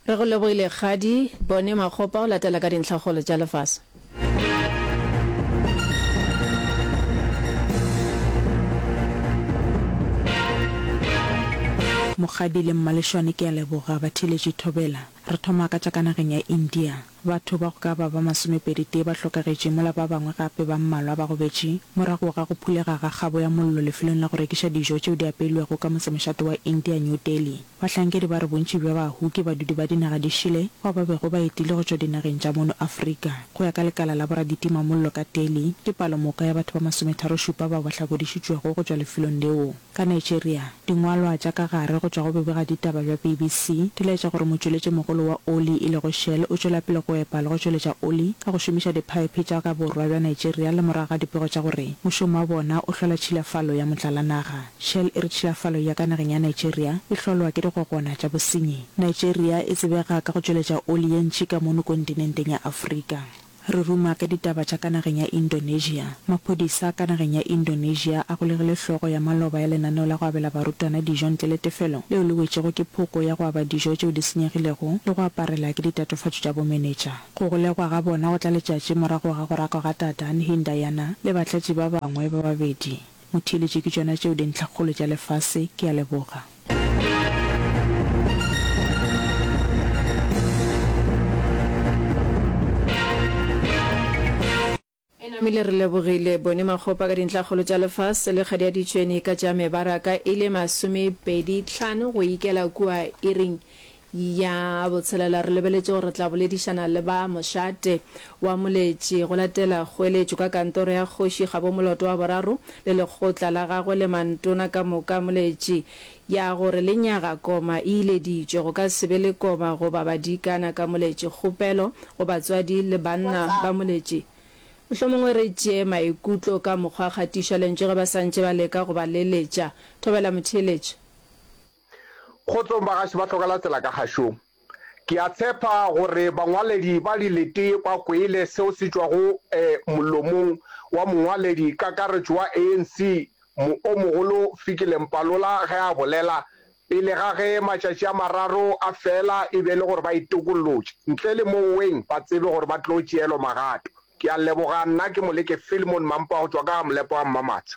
Re go lebohile kgadi. Bone Makgopa o latela ka dintlhakgolo tša lefase. Mokgadi le Mmaleshwane ke a leboga ba theletše thobela. Re thoma ka tša ka nageng ya India. Batho ba go ka ba ba masomepeditee ba hlokagetše, mola ba bangwe gape ba mmalwa ba gobetše morago ga go phulega ga kgabo ya mollo lefelong la go rekiša dijo tšeo di apeilwego ka motsemošate wa India, New Delhi. Bahlankedi ba re bontši bja bahu ke badudi ba dinaga di šele bao ba bego ba etile go tšwa dinageng tša mono Afrika. Go ya ka lekala la boraditimamollo ka Delhi, ke palomoka ya batho ba masometharo-šupa bao ba hlakodišitšwego go tšwa lefelong leo. Ka Nigeria, dingwalwa tša ka gare go tšwa go bobegaditaba bja BBC di laetša gore motšweletšimogolo wa oli e lego Shell o tšwela pele go epa le go tšweletša oli ka go šomiša diphaephe tša ka borwa bja Nigeria le morago ga dipego tša gore mošomo wa bona o hlola tšhilafalo ya motlalanaga. Shell e re tšhilafalo ya ka nageng ya Nigeria e hlolwa ke digogona tša bosenyi. Nigeria e tsebega ka go tšweletša oli ye ntši ka mono kontinenteng ya Afrika. Re ruma ka ditaba tša ka nageng ya Indonesia. Maphodisa ka nageng ya Indonesia a golegile hlogo ya maloba ya lenaneo la go abela barutwana dijo ntle le tefelo leo le wetšego ke phoko ya go aba dijo tšeo di senyegilego le go aparela ke ditatofatšo tša bomenetša. Go golegwa ga bona go tla letšatši morago ga go rakwa ga Dadan Hindayana le batlatši ba bangwe ba babedi. Motheeletši ke tšona tšeo dintlhakgolo tša lefase ke a leboga. E namile re lebogile bone makgopa ka dintlhakgolo tša lefase le kgadi ya ditšweni ka tša mebaraka e le masomepedi tlhano go ikela kua iring Ya botshelela, re lebeletše gore re tla boledišana le ba mošate wa moletši go latela kgoeletšo ka kantoro ya kgoši gabo moloto wa boraro le lekgotla la gagwe le mantona ka moka. Moletši ya gore lenyaga koma e ileditšwe, go ka se be le koma goba badikana ka moletši. Kgopelo go batswadi le banna ba moletši, Mohlomongwe re tšee maikutlo ka mokgwa kgatišwa lentswe ge ba sa ntše ba leka go ba leletša. Thobela motheeletši. Kgotsong bagaši ba Tlhokalatsela ka gašong. Ke a tshepa gore bangwaledi ba dilete ba kweile seo se tšwago molomong wa mongwaledi kakaretšo wa ANC mo o mogolo Fikile Mpalola ge a bolela pele ga ge matšatši a mararo a fela e be e le gore ba itokollotše ntle le mo weng ba tsebe gore ba tlo tšeelwa magato. Ke a leboga. Nna ke Moleke Filmon Mampa go tšwa ka ga Molepo wa Mmamatsha.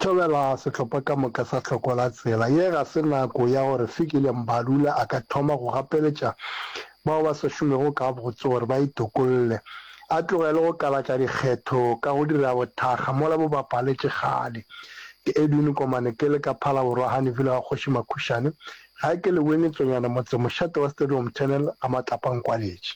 Thobela sehlopha ka moka sa Hloko la Tsela. Ye ga se nako ya gore Fikile Mbalula a ka thoma go gapeletša bao ba sa šomego gabotse gore ba itokolle. A tlogele go kalatša dikgetho ka go dira bothakga mola bo bapaletše kgale. Ke Edwin Komane ke le ka Phalaborwa Honeyville ga Kgoši Makhušane, gae ke le Winnie Tsonyane motse mošate wa Stadium Tunnel ga Matlapa Nkwaletše.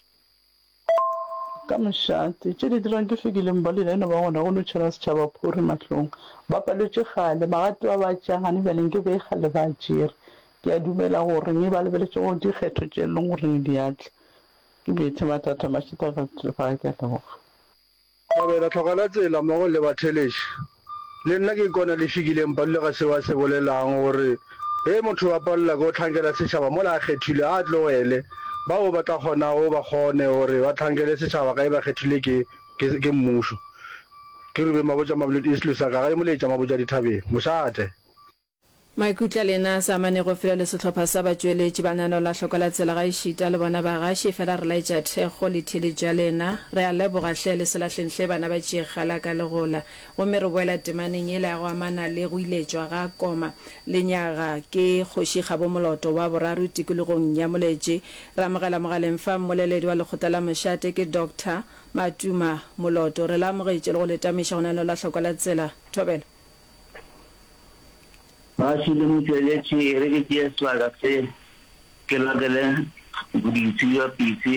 Ka mošate, tše di dirang ke fekileng ba lena e no ba gona go no tšhela setšhaba phuri mahlong. Ba palwetše kgale, bagati ba ba tša gane bjale nke be kgale ba tšere. Ke a dumela gore ge ba lebeletše go dikgetho tše e leng gore di a tla, ke bethe mathata mašata ka tšefa ge ke a leboga. Kgobela, Tlhokanatsela mmogo le Batheleši, le nna ke ikona le fikile Mpalula ga seo a se bolelago gore ge motho a palelwa ke go hlankela setšhaba mola a kgethilwe a tlogele bao ba tla kgonago ba kgone gore ba hlankele setšhaba ga e ba kgethilwe ke ke mmušo. Ke Rubeng Mabotja Mabuledi Istlosaka ga e mo letša Mabotja Dithabeng. Mošate. Maikutlo a lena a sa amanego fela le sehlopha sa batšweletši ba nano la hloko la tsela gaešita le bona bagaši fela re laetša thekgo le theeletšo ya lena. Re a leboga hle le se lahleng hle bana ba Tšiekhgala ka legola. Gomme re boela temaneng yela ya go amana le go iletšwa ga Koma lenyaga ke Kgoši Kgabo Moloto wa boraro tikologong ya Moletše. Re amogela mogaleng fa mmoleledi wa lekgotla la mošate ke Doctor Matuma Moloto. Re le amogetše le go le tamiša go nano la hloko la tsela. Thobela. Kgauswi le motšweletši, e re ke tšee sebaka se, ke lokele dipitsi bja pitsi,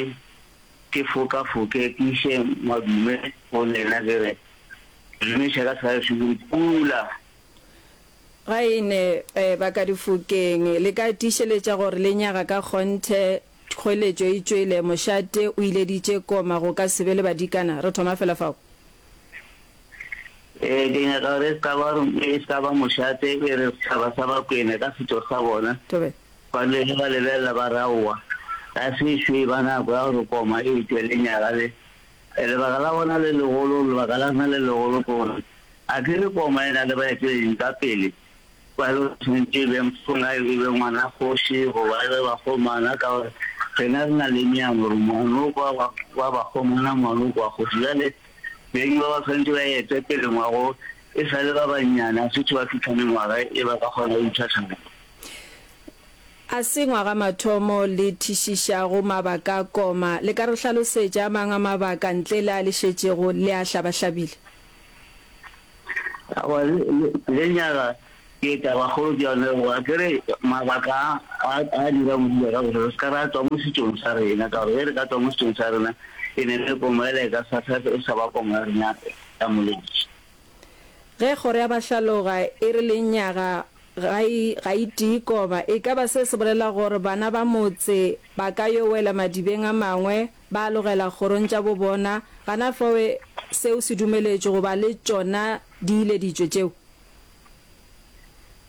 ke fokafoke, ke iše madume go lena, ke re, Ke dumiša ka Kgauswi le Mpula. Ga e ne e ba ka difokeng, le ka tiišeletša gore le nyaga ka kgonthe, kgoeletšo e tšwele, mošate o ileditše koma, go ka se be le badikana, re thoma fela fao. Ee, ke nyaka gore e ska ba e ska ba mošate e re sethaba sa Bakwena ka setšo sa bona ba dule ge ba lebelela ba raowa ga se ešo e ba nako ya gore koma e tšwe lenyaga le lebaka la bona le legolo lebaka la rena le legolo ke gore a ke re koma e na le baeteleding ka pele Ba re o tshwanetše e be mphola, e be ngwana kgoši goba e be bakgomana ka gore rena re na le meang gore ngwanoko wa bakgomana, ngwanoko wa kgoši. Bjale beng ba ba tshwanetše ba ete pele ngwago e sa le ba bannyane, a se tho ba fihla mengwaga e ba ka kgona go itšha thabeng. A se ngwaga mathomo le thišišago mabaka a koma. Le ka re hlalosetša a mang a mabaka ntle le a le šetšego le a hlabahlabile? Aowa, lenyaga ke tabakgolo ke yone go a kere mabaka a a dira modula ka gore re se ka ra tswa mo setsong sa rena ka gore ge re ka tswa mo setsong sa rena e ne le komo ele e ka sa e sa ba komo ya rena ya moledi. Ge kgoro ya bahlaloga e re lenyaga ga e ga e tie koba e ka ba se se bolela gore bana ba motse ba ka yo wela madibeng a mangwe Ba alogela kgorong tša bo bona, gana fawe seo se dumeletšwe goba le tšona diileditšwe tšeo.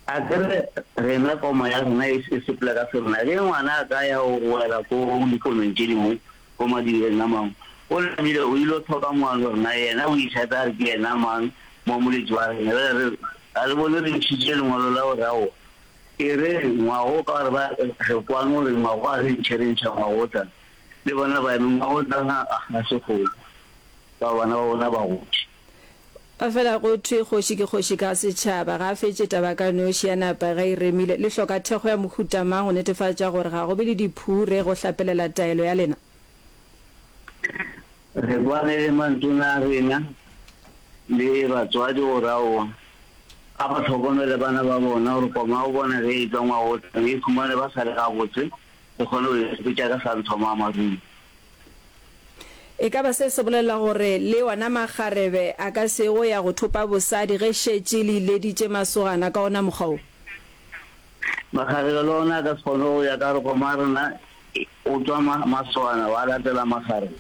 A ke re, rena koma ya rena e se sepela ka serena, ge ngwana a ka ya go wela ko dikonong tše dingwe, ko madireng a mangwe, o namile o il'o thoka moano, rena yena o itlhatha a re ke yena mang, moamoletši wa rena. Bjale re re, ga le bone re ntšhitše lengwalo la go re aowa? E re, ngwago o ka re ba re kwano re ngwago a re ntšhe re ntšha ngwago o tla. Le bona ba eme mma go nna ga se kgole ba bana ba bona ba gotše. Efela go thwe kgoši ke kgoši ka setšhaba. Ga a fetše taba ka noši, a napa ge e remile, Le hloka thekgo ya mohuta mang go netefatša gore ga go be le diphure go hlapelela taelo ya lena? Re kwane le mantona a rena le batswadi gore aowa a ba hlokomele bana ba bona gore koma o bona ge e tla ngwagotlang e ikhumane ba sa le gabotse Ke kgone go ikhwetša ke sa nthwa moamarung. E ka ba se se bolelela gore le ona makgarebe a ka se ye go ya go thopa bosadi ge šetše le ileditše masogana ka ona mokgwa wo? Makgarebe le ona a ka se kgone go ya ka gore koma rena o tšwa masogana wa latela makgarebe.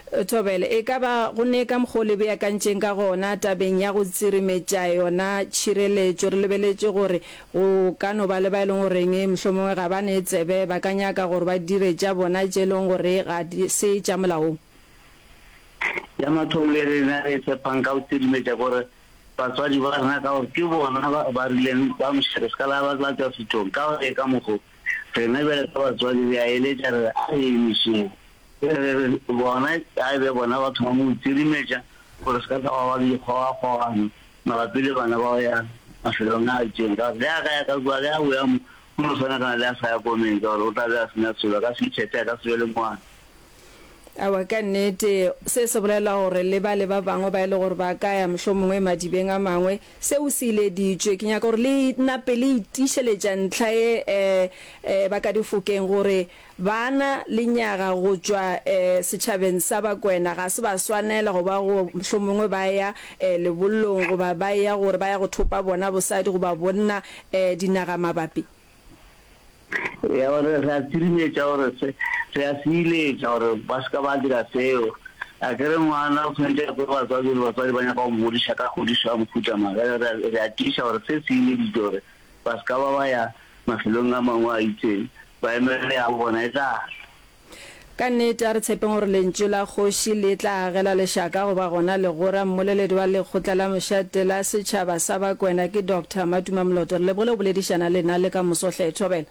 Thobela, E ka ba go ne ka mokgwa o le beakantšeng ka gona tabeng ya go tsirimetša yona tšhireletšo. Re lebeletše gore go ka no ba le ba e leng goreng mohlomongwe ga ba ne tsebe, ba ka nyaka gore ba dire tša bona tše e leng gore ga se tša molaong. Ya mathomo ye rena re e tshepang ka go tsirimetša ke gore batswadi ba rena ka gore ke bona ba ba rileng ba mošerefkalaa ba tla tšwa sethong ka go e ka mokgwa o. Rena bjale ka batswadi re a eletša re re, a re emišeng. Re re re bona a e be bona ba thoma go itirimetša gore se ka tla gwa ba le dikgogakgogano mabapi le bana ba go ya mafelong a a itšeng. Ka gore ge a ka ya ka kua, ge a boya mo, o no swanagana le a sa ya ko Menta gore o tla be a se na selo, a ka se ithethe, a ka se be le ngwana. Aowa, ka nnete, se se bolela gore le bale ba bangwe ba e le gore ba ka ya mohlomongwe madibeng a mangwe, seo se ileditšwe. Ke nyaka gore le nape le itiišeletša ntlha ye um um ba ka difokeng, gore bana, lenyaga, go tšwa um setšhabeng sa Bakwena ga se ba swanela go ba go mohlomongwe ba ya um lebollong goba ba eya gore ba ya go thopa bona bosadi goba bonna um dinagamabapi. Ya gore re a tsirimetša gore se re a se iletša gore ba se ka ba dira seo. A ke re ngwana o tshwanetse a kwe batswadi gore batswadi ba nyaka go mmodiša ka kgodišo ya mohuta mang. Re a tiiša gore se se ileditše gore ba se ka ba ba ya mafelong a mangwe a itseng ba emelele ya bona e tla tla. Ka nnete, a re tshepeng gore lentšu la Kgoši le tla agela lešaka goba gona legora. Mmoleledi wa lekgotla la mošate la setšhaba sa Bakwena ke Doctor Matuma Moloto. Re lebogile go boledišana le lena le ka moso. Hle, thobela.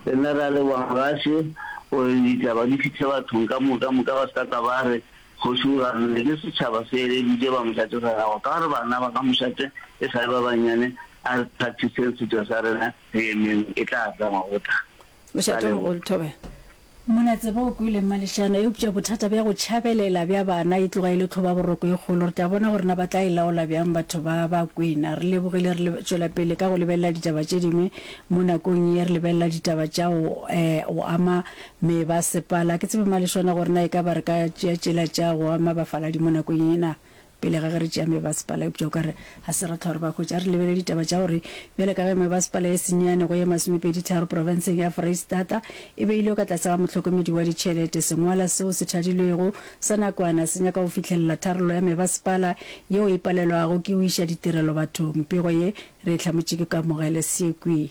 Le nna re a leboga Mogashe gore ditaba di fihle bathong ka moka moka ba se ka tla ba re Kgoši o ganne. Ke setšhaba se eleditše ba mošate sa gagwe ka gore bana ba ga mošate e sa le ba bannyane. A re practiseng setšo sa rena, re emeng e tla tla ngwagotlana. Mošatong o Lthobe. Mona tseba o kwele mmalešana, eupša bothata bja go tšhabelela bja bana e tloga e le tlhobaboroko e kgolo. Re tla bona gore na ba tla e laola bjang batho ba ba kwena. Re lebogile re tšwela pele ka go lebelela ditaba tše dingwe mo nakong ye re lebelela ditaba tša go go ama mebasepala. Ke tsebe mmalešwana gore na e ka ba re ka tšea tšela tša go ama bafaladi mo nakong ye na? Pele ga ge re tšea mebasepala, eupša o ka re ga se ra hlwa re ba hwetša, re lebelele ditaba tša gore bjale ka ge mebasepala ye senyane go ye masomepeditharo profenseng ya Foreistata e beilwe ka tlase ga mohlokomedi wa ditšhelete, sengwala seo se thadilwego sa nakwana se nyaka go fihlelela tharollo ya mebasepala yeo e palelwago ke go iša ditirelo bathong. Pego ye re e hlamotše ke Kamogele Sekwee.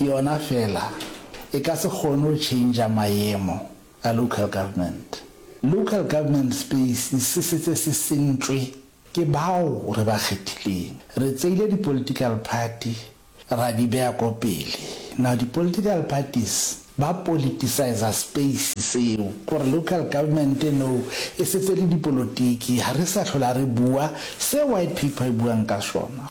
yona fela e ka se kgone go change-a mayemo a local government. Local government space se setse se sentšwe ke bao re ba kgethileng. Re tseile di political party ra di beya ko pele. Now di political parties ba politiciser space seo gore local government now e setse le dipolotiki, ga re sa hlola re bua se white paper e buang ka sona.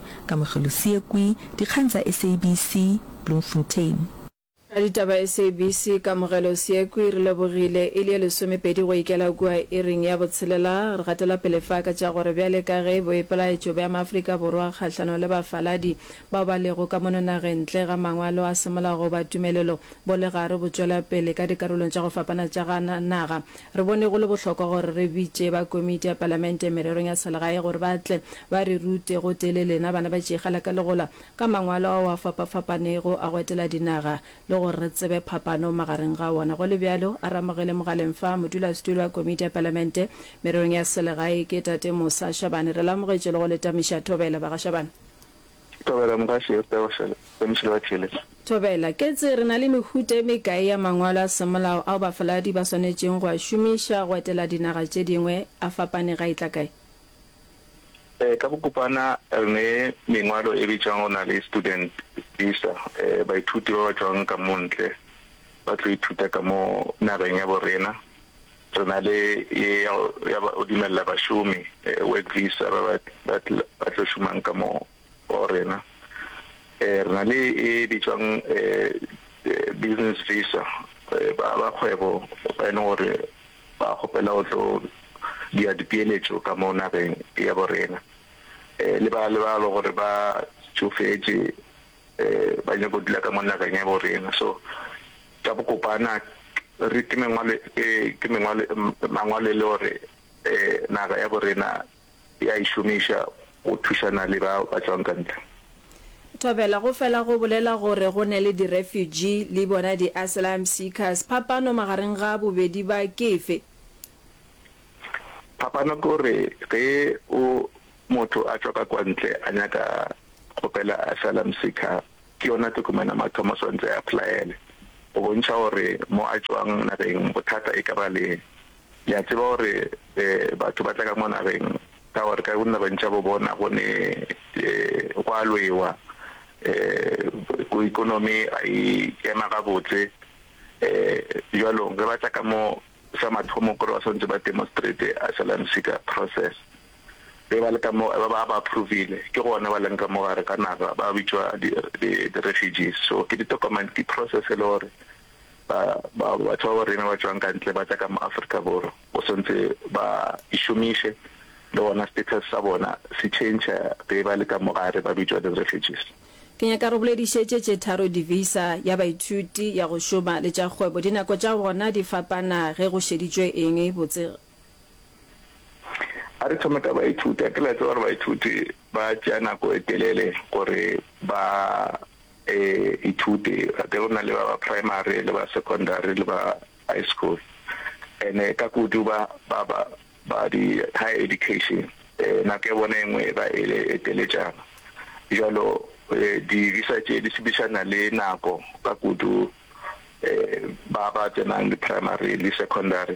Kamogelo Seekwi, Dikgang tsa SABC, Bloemfontein. Raditaba SABC, Kamogelo Seekwi, Re lebogile e le ye lesomepedi go ikela kua iring ya botshelela. Re gatela pele fa ka tša gore bjale ka ge boipelaetšo bja Maafrika Borwa kgahlanong le bafaladi bao ba lego ka mono nageng ntle ga mangwalo a semolao goba tumelelo bo le gare bo tšwela pele ka dikarolong tša go fapana tša ga naga, Re bone go le bohlokwa gore re bitše ba Komiti ya Palamente Mererong ya Selegae gore ba tle ba re rute gotee le lena bana ba Tšeegala ka Legola ka mangwalo ao a fapa-fapanego a go etela dinaga le gore re tsebe phapano magareng ga wona. Go le bjalo, a re amogele mogaleng fa Modulasetulo wa Komiti ya Palamente Mererong ya Selegae ke Tate Mosa Shabane. Re le amogetše le go le tamiša thobela, Bagašabane. Thobela, Mogaši, Esther, Goshele, le Mošilo wa Theeletšo. Thobela, Ketse re na le mehuta e mekae ya mangwalo a semolao ao bafaladi ba swanetšeng go a šomiša go etela dinaga tše dingwe, a fapane ga e tla kae? Ee, ka bokopana re ne mengwalo e bitšwang go na le student visa, baithuti ba ba tšwang ka mo ntle ba tlo ithuta ka mo nageng ya bo rena, Re na le ye ya go ya ba go dumelela bašomi, work visa, ba ba ba tl ba tlo šomang ka mo go rena. Re na le e bitšwang business visa, ba ba kgwebo ba e leng gore ba kgopela go tlo dira dipeeletšo ka mo nageng ya bo rena, le ba le ba le gore ba tšofetše. ba nyaka go dula ka mo nageng ya bo rena so ka bokopana re ke mengwalo e ke mengwalo mangwalo e le gore eh naga ya bo rena ya e šomiša go thušana le ba ba tswang ka ntle Thobela go fela go bolela gore go ne le di refugee le bona di asylum seekers phapano magareng ga bobedi ba ke efe? Phapano ke gore ge o Motho a tšwa ka kwantle a nyaka go pela asylum seeker, ke yona tokomane ya mathomo a swantse a applyele go bontšha gore mo a tšwang nageng. Bothata e ka ba le, le a tseba gore batho ba tla ka mo nageng ka gore ka dinageng tša bo bona go ne go a lwewa, ko economy ga e ema gabotse. Jwalong ge ba tla ka mo sa mathomo ke gore ba swantse ba demonstrate asylum seeker process. be ba le ka mo ba ba ba approvile ke gona ba leng ka mo gare ka naga ba bitšwa di di di refugees so ke ditokomane ke process e le gore ba ba batho ba rena ba tšwang ka ntle ba tla ka mo Africa Borwa o sontse ba ishomiše le gona status sa bona se change be ba le ka mo gare ba bitšwa di refugees. Ke nyaka re boledišetše tše tharo di visa ya baithuti ya go šoma le tša kgwebo dinako tša gona di fapana ge go šeditšwe eng botse A re thome ka baithuti. A ke la tseba gore baithuti ba tšea nako e telele gore ba e ithute a ke go na le ba ba primary le ba secondary le ba high school ene ka kudu ba ba ba ba di high education eh, nako ya bona engwe e ba e le e teletšana jalo eh, di-visa tše di sebišana le nako ka kudu eh, ba ba tsenang di-primary le secondary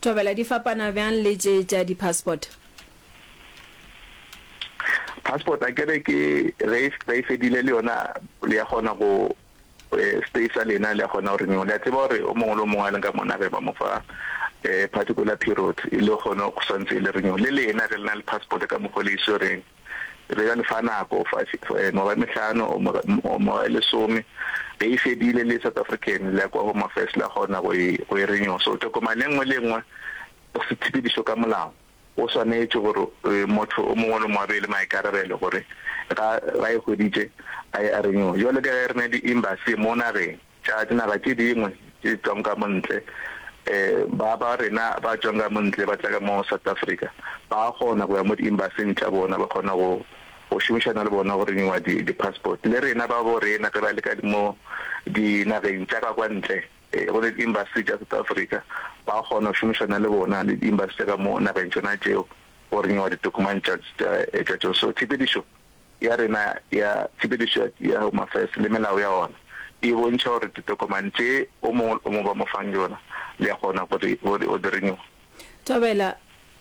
Thobela di fapana bjang le tše tša di passport? Passport akere ke ge ba e fedile le yona le ya kgona go stay sa lena le ya kgona go renew. Le a tseba gore o mongwe le o mongwe a leng ka mona ge ba mo fa particular period e le kgona go swantse le renew. Le lena ge le na le passport ka mokgwa o le e swereng, Re be ra le fa nako, ngwaga e mehlano or ngwaga e lesome, ge e fedile le South African le ya kwa Home Affairs la kgona go e, go e renewa. So tokomane e nngwe le e nngwe or setshepedišo ka molao o swanetše gore motho o mongwe le mongwe a be le maikarabelo gore ga, ga e hweditše a e a renewa. Jwale ka ge re na le di-embassy mo nageng, Tša dinaga tše dingwe tše tšwang ka mo ntle, ba ba rena ba tšwang ka mo ntle ba tla ka mo South Africa, ba a kgona go ya mo di-embassy-ing tša bona, ba kgona go go šomišana le bona go renew-a di di-passport. Le rena ba bo rena ge ba le ka mo dinageng tša ka kwa ntle, go na le di-embassy tša South Africa, ba kgona go šomišana le bona le di-embassy tša ka mo nageng tšona tšeo go renew-a ditokomane tša tša tša tšona. So tshepedišo. ya rena ya Tshepedišo ya Home Affairs le melao ya ona e bontšha gore ditokomane tše o mongwe le o mongwe ba mo fang yona le a kgona go di, go di, go di renewa. Thobela,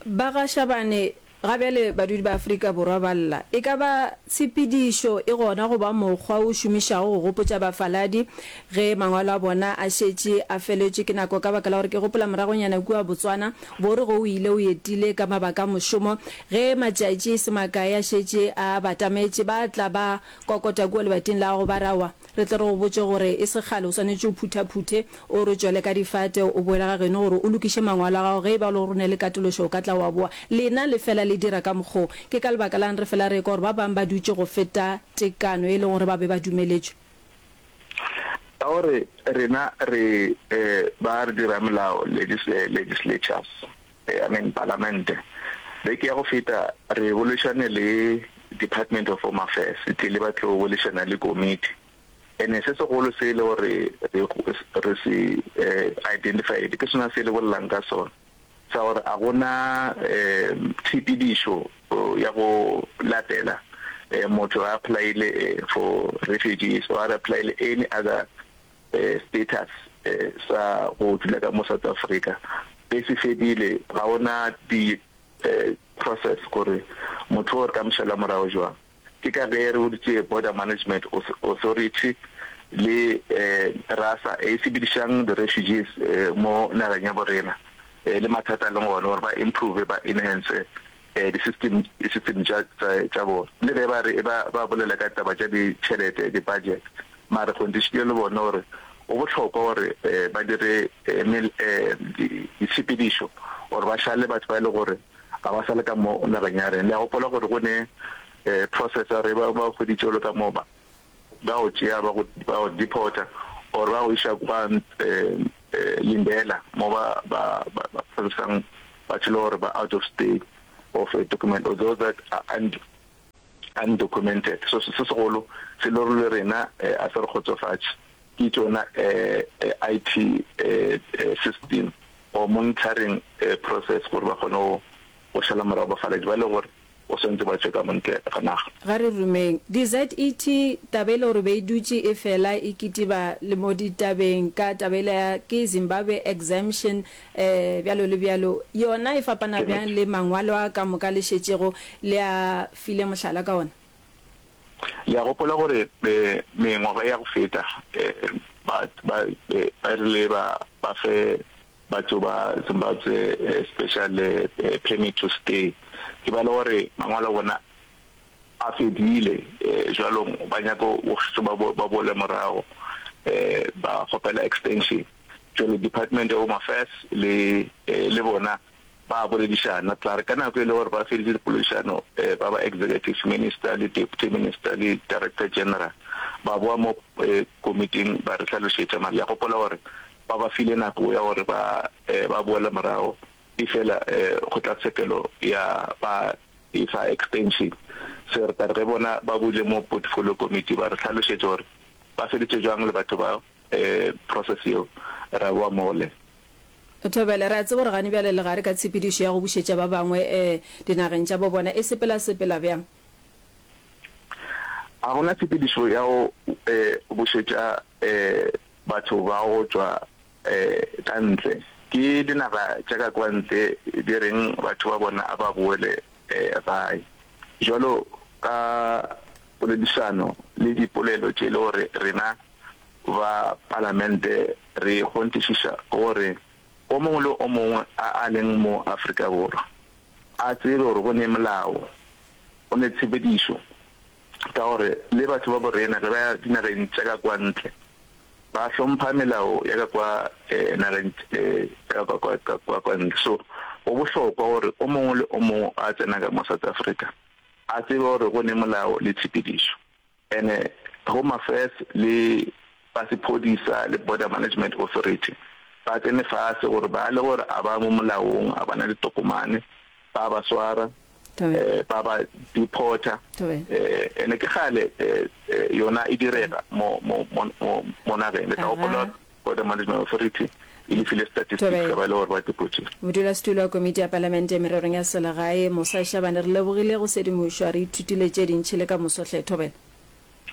Ba ga Shabane ga bjale badudi ba Afrika Borwa ba lla. E ka ba tshepedišo e gona go ba mokgwa o šomišago go gopotša bafaladi Ge mangwalo a bona a šetše a feletšwe ke nako, ka baka la gore ke gopola moragonyana kua Botswana, Borigo o ile o etile ka mabaka a mošomo, ge matšatši e se makae a šetše a batametše, ba tla ba kokota kua lebating la gago ba re, Aowa, re tle re go botše gore e se kgale o swanetše o phuthaphuthe, o re tšwele ka difate, o boele ga geno gore o lokiše mangwalo a gago, ge e ba o le gore o na le katološo o ka tla wa boa. Lena le fela le dira ka mokgwa wo. Ke ka lebaka la'ng re fela re ekwa gore ba bang ba dutše go feta tekano e lego gore ba be ba dumeletšwe? Ka gore rena re ba re dira melao, legislatures, I mean palamente, beke ya go feta re boledišane le Department of Home Affairs, e tlile ba tlo boledišana le committee. And-e se segolo se e le gore re se identified ke sona se le bolelang ka sona. sa gore a go na tshepedišo ya go latela motho a apply-ile for refugees or a apply-ile any other status sa go dula ka mo South Africa be se fedile, ga go na di process gore motho o re ka mo šala morago jwang. Ke ka ge re boditše Border Management Authority le RASA e sebedišang di-refugees mo nageng ya bo rena le mathata a leng gona gore ba improve, ba enhance di-system tša bona. Le ge ba re e ba ba bolela ka taba tša ditšhelete, di-budget, mara re kgonthišitše le bona gore go bohlokwa gore ba dire ditshepedišo or ba šale batho ba e le gore ga ba sa le ka mo nageng ya rena. Le a gopola gore go ne eh, process ya re ba ba hweditše o le ka mo ba ba go tšea ba go ba go deporter or ba go iša kwa eh, eh, Lindela mo ba ba ba ba processang batho le gore ba out of state of a document or those that are und- undocumented so se se segolo se lore le rena eh, a se re kgotsofatše Ke tšona IT system or monitoring process gore ba kgone go šala morago bafaladi ba e le gore o swantse ba tšwe ka montle ga naga. Ga re rumeng. DZET, taba e le gore be e dutše e fela e kitiba le mo ditabeng ka taba ela ya ke Zimbabwe Exemption bjalo le bjalo, yona e fapana bjang le mangwalo a ka moka le šetšego le a file mohlala ka ona? Le a gopola gore mengwaga e ya go feta, ba, ba, ba rile ba, ba fe batho ba Zimbabwe special permit to stay. Ke ba le gore mangwalo a bona a fedile, jwalong ba nyaka go ba, ba boele morago, ba kgopela extension. Jwale Department of Home Affairs le, le bona. Ba boledišana, tla re ka nako e le gore ba feditše dipoledišano, ba ba Executive Minister le Deputy Minister le Director General ba bowa mo komiting ba re hlalošetša, mara ke a gopola gore ba ba file nako ya gore ba ba boele morago efela kgotlatshekelo ya ba e fa extension. So re tla re ge bona ba boile mo Portfolio Committee ba re hlalošetše gore ba feditše bjang le batho bao. process yeo re a boa mole. Thobela, re a tseba gore gane bjale le gare ka tshepedišo ya go bušetša ba bangwe dinageng tša bo bona, e sepela sepela bjang? Ga go na tshepedišo ya go bušetša batho ba go tšwa ka ntle. Ke dinaga tša ka kwa ntle di reng batho ba bona a ba boele gae. Bjalo ka poledišano le dipolelo tše e le gore rena ba Palamente re kgonthišiša gore o mongwe le o mongwe a a leng mo Afrika Borwa a tsebe gore go ne molao, go ne tshepedišo ka gore le batho ba borena ge ba ya dinageng tša ka kwa ntle ba hlompha melao ya ka kwa nageng tša ka kwa ntle. So go bohlokwa gore o mongwe le o mongwe a tsena ka mo South Africa a tsebe gore go ne molao le tshepedišo. Ene Home Affairs le ba sephodisa le Border Management Authority ba tsene fase gore ba le gore a ba mo molaong, a ba na ditokomane, ba ba swara, ba ba deporta. Ene ke kgale yona e direga mo nageng, le tla gopola gore. Border Management Authority e le file statistics ya ba e le gore ba depotše. Modulasetulo wa Komiti ya Palamente Mererong ya Selegae, Mosa Shabane, re lebogile go sedimošwa, re ithutile tše dintši le ka moso hle Thobela.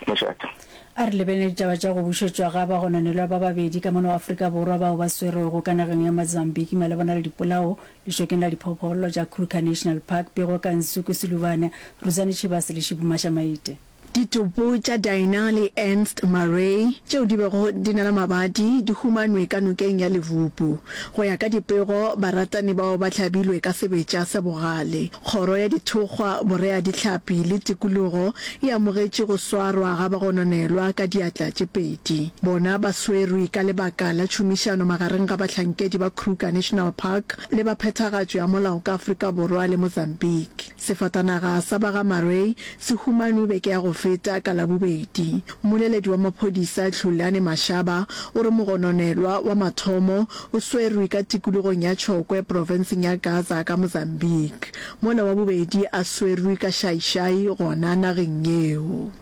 Mošate. A re lebeleng ditaba tša go bušetšwa ga bagononelwa ba babedi ka mona wa Afrika Borwa bao ba swerwego ka nageng ya Mozambique malebana le dipolao lešokeng la diphophollo tša Kruger National Park, Pego Kansuku Silubane, Ruzani Chibase le Shibu Mashamaite. Ditopo tša Dinah le Ernst Murray tšeo di bego di na le mabadi di humanwe ka nokeng ya Levupu. Go ya ka dipego, baratani bao ba hlabilwe ka sebetša sa bogale. Kgoro ya Dithokgwa, Boreadihlapi le Tikologo e amogetše go swarwa ga bagononelwa ka diatla tše pedi. Bona ba swerwe ka lebaka la tšhomišano magareng ga bahlankedi ba Kruger National Park le ba phethagatšo ya molao ka Afrika Borwa le Mozambique. Sefatanaga sa ba ga Marwei se humanwe beke ya go feta ka Labobedi. Mmoleledi wa maphodisa Tlhulane Mashaba o re mogononelwa wa mathomo o swerwe ka tikologong ya Chokwe profenseng ya Gaza ka Mozambique, mola wa bobedi a swerwe ka Xai-Xai gona nageng yeo.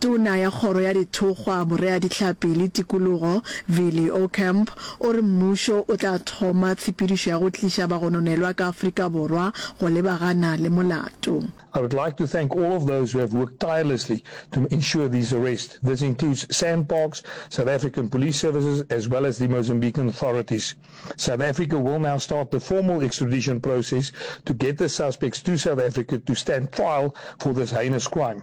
Tona ya Kgoro ya Dithokgwa, Boreadihlapi le Tikologo, Vili Ocamp, o re mmušo o tla thoma tshepedišo ya go tliša bagononelwa ka Afrika Borwa go lebagana le molato. I would like to thank all of those who have worked tirelessly to ensure these arrests. This includes SANParks, South African Police Services as well as the Mozambican authorities. South Africa will now start the formal extradition process to get the suspects to South Africa to stand trial for this heinous crime.